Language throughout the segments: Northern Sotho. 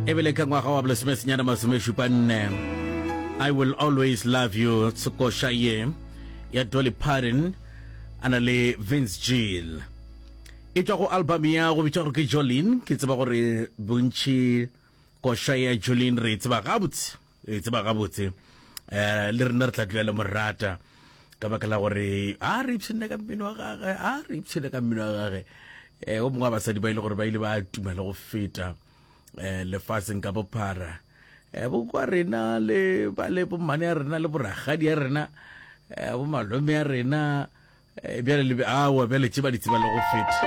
e bele ka ngwaga wa bolesomesenyana masomešupa nne i will always love you tsekoša ye ya dolly parton a na le vince gill e tšwa go album ya go bitša gore ke jolin ke tseba gore bontši koša ya jolin re e tseba gabotse e tseba gabotse um le rena re tla tloya le morata ka baka la gore a re ipshine ka mmino wa gage a re ipshine ka mmino wa gage um o mongwe wa basadi ba e le gore ba ile ba tuma le go feta um lefatsheng ka bophara um bokwa rena le ba le bommane ya rena le boragadi ya rena um bomalome ya rena Eh, bjale le awa bjale tše ba di tseba le go feta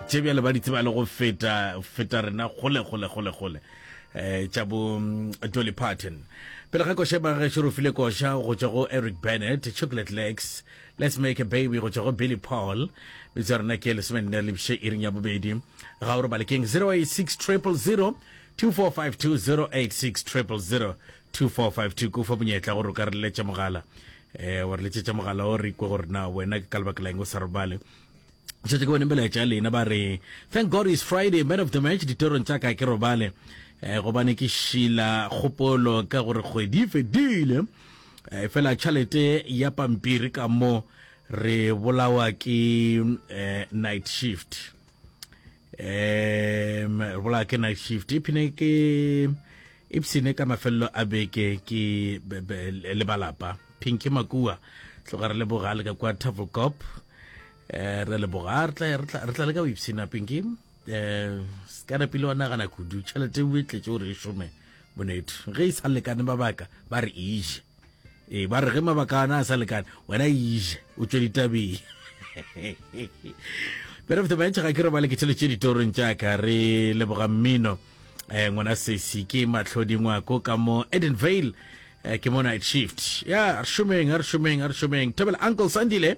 tše bjale ba di tseba le go feta feta rena gole gole gole gole eh tša bo mm, Dolly Parton pele ga koša ba ge šorofile koša go tšwa go Eric Bennett Chocolate Legs Let's Make a Baby go tšwa go Billy Paul bitsa rena ke lesome nne le bše iring ya bobedi ga o re balekeng 086 000 2452 086 000 2452 kufa bonyetla gore o ka re leletša mogala eh wa re letsetša mogala o re ikwe gore na wena ke ka lebaka la eng o sa re bale šetse ke bone melaetša ya lena ba re thank god is friday man of the match ditorong tša ka ke robale um gobane ke šila kgopolo ka gore kgwedi e fedile um fela tšhalete ya pampiri ka mo re bolawa ke um night shift um re bola ke night shift iphine ke ipsene ka mafelelo a beke ke le balapa pinke makua tloga re leboga le ka kwa travel cop um re leboga re tla le ka go ipsena pinke um eh, sekana pele wa nagana kudu tšhelete o e tletse gore e šome bonetho ge e sa lekane ba baka ba re ije Ee, ba re ge mabaka ana a sa lekane, wena iže o tšwe ditabeng. Bere fete ba ntšha ga ke robale ke tšheletse ditorong tša ka re leboga mmino eh ngwana sesi ke matlhodi ngwako ka mo Edenvale eh, ke mo night shift ya re šomeng a re šomeng a re šomeng thabela uncle sandile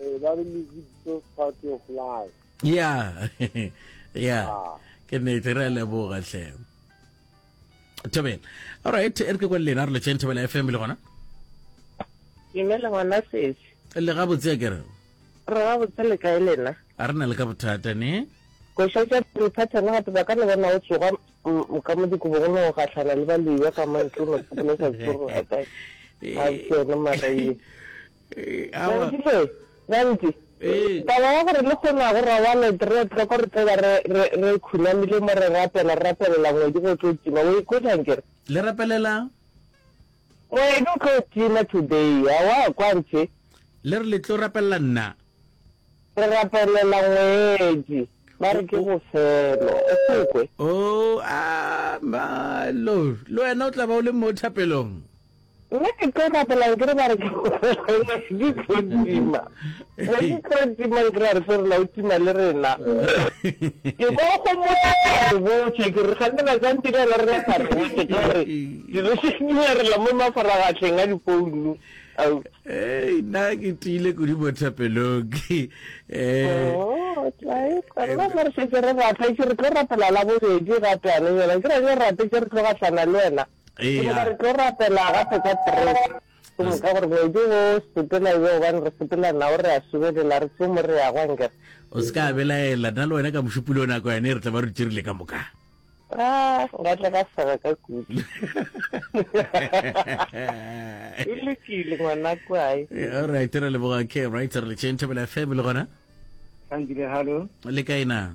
Eh, ba re music so part of life yeah yeah ah. ke nete re a leboga tlhe thobela alright e re ke kwa lena re letseng thobela fm le gona dumela ngwana sesi le ga botse ke re re ga botse le kae lena a re na le ka bothata ne košetša pele pattern gape ba ka le bona o tsoga ka mo dikobong le go gatlhana le baloiwa ka mantle o no tsogola sa tsoro ga kae a tsene maraile Gantši se, gantši, taba ya gore lehono ga go robale, re tlo ko re tlo ba re, re, re khunamile mo re rapela, re rapelela ngwedi go tlo tima. O ikhwetša nkere? Le rapelela? Ngwedi o tlo tima today, a wa kwa nche? Le re le tlo rapelela nna? Re rapelela ngwedi, ba re ke bofelo, o se kwe? Oh, a, ma, lo, le wena o tla ba o le mo thapelong. Nna ke tlo rapela ke re ba re di tlo tima ba di tlo tima ke ra re tlo rena o tima le rena ke go go mo re botse ke re gane ba tsantse ka la rena ka re botse ke re di re se di re la mo mafaragatleng a dipounu au eh na ke tile go di botsa peloki eh oh tlae ka la re se ke re rata ke re tlo rapela la bobedi ga tane yona ke re rate ke re tlo gatlana le wena Ke bona re tlo rapela gape ka kereke. Ke moka gore ngwedi wo sepela yo gobane re sepela nao re a subelela re tlo mo re ya go angere. O se ka belaela, nna le wena ka mošupuleo nako yane re tla ba re tširile ka moka. A, nka tla ka sega ka kudu. E lokile ngwana kwae. All right, re leboga ke right re le tšeng thobela FM le gona. Thank you, hello. Le kae na?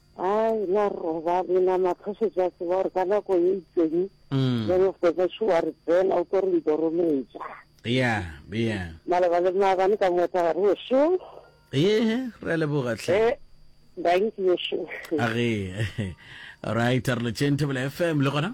Hai, na roba le na matlhoše tša tseba gore ka nako ye itseng mm. then of the batho wa re tsena o tlo re ntorometša yeah yeah maloba le maabane ka motsa ga re ošo ehe re leboga tlhe eh, thank you ošo a re right re le tšentebele fm le gona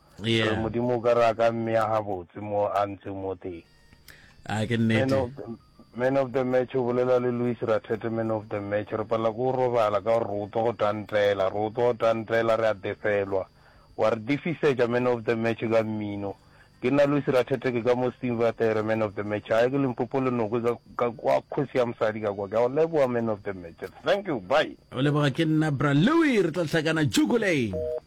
Yeah. Re Modimo o ka re a ka mmea gabotse mo a ntseng mo teng. A ke Man nnete. of the, man of the match o bolela le Louis Rathete man of the match re palela ke go robala ka gore re utlwa go tantela re utlwa go tantela re a defelwa wa re difisetša man of the match ka mmino ke nna Louis Rathete ke ka mo Steenvatere man of the match a ye ke Limpopo le noko ka, ka kwa kgosi ya mosadi ka kwa ke a go leboa man of the match thank you bye O leboga ke nna bra Louis re tla hlakana Jukuleng.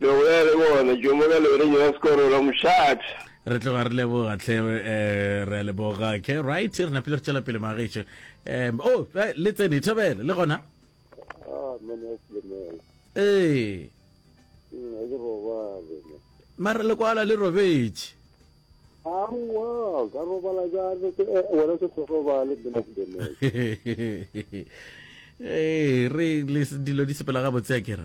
Lo bolela le bona, Jomo ka lore nyena sekoro la mošate. Re tloga re leboga tlhe eh, re a leboga ke right re napile re tšwela pele magaešo um o eh, le tsene thobele le gona Ah, mane a Selemela. ee Mm, a ke robale ne. mara lekwala le robetše Aowa, ka robala jang? Ke- eh, wena se go robale, mane a Selemela. ee re le dilo di sepela gabotse a kere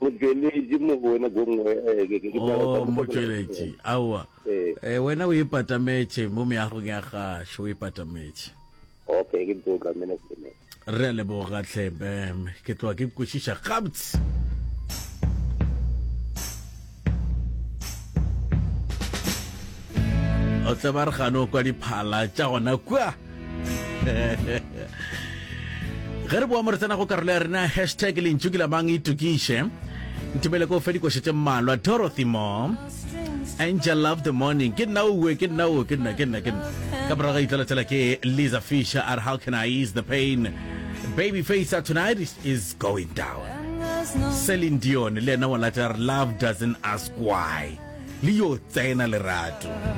motšweletši mo go wena gongwe eh, motšweletši aowa eh. eh, wena o e patametše mo meagong ya gašo o e patametše okay ke ntse o tlamene sene re a leboga tlhebem ke tloa ke kwešiša gabotse o tle ba re gane o kwa diphala tša gona kua ge re boa mo re tsena go karolo ya rena hashtag lentšu ke lamang itokiše nthibele ko fe dikoša tše mmalwa dorothy mo angel love the morning ke nna owe ke nna o ke nna ke nna ke nna ka morago ga itlalatsela ke lisa fisher are how can i ease the pain baby face tonight is going down Celine Dion le yena wa latela re love doesn't ask why le yo tsena lerato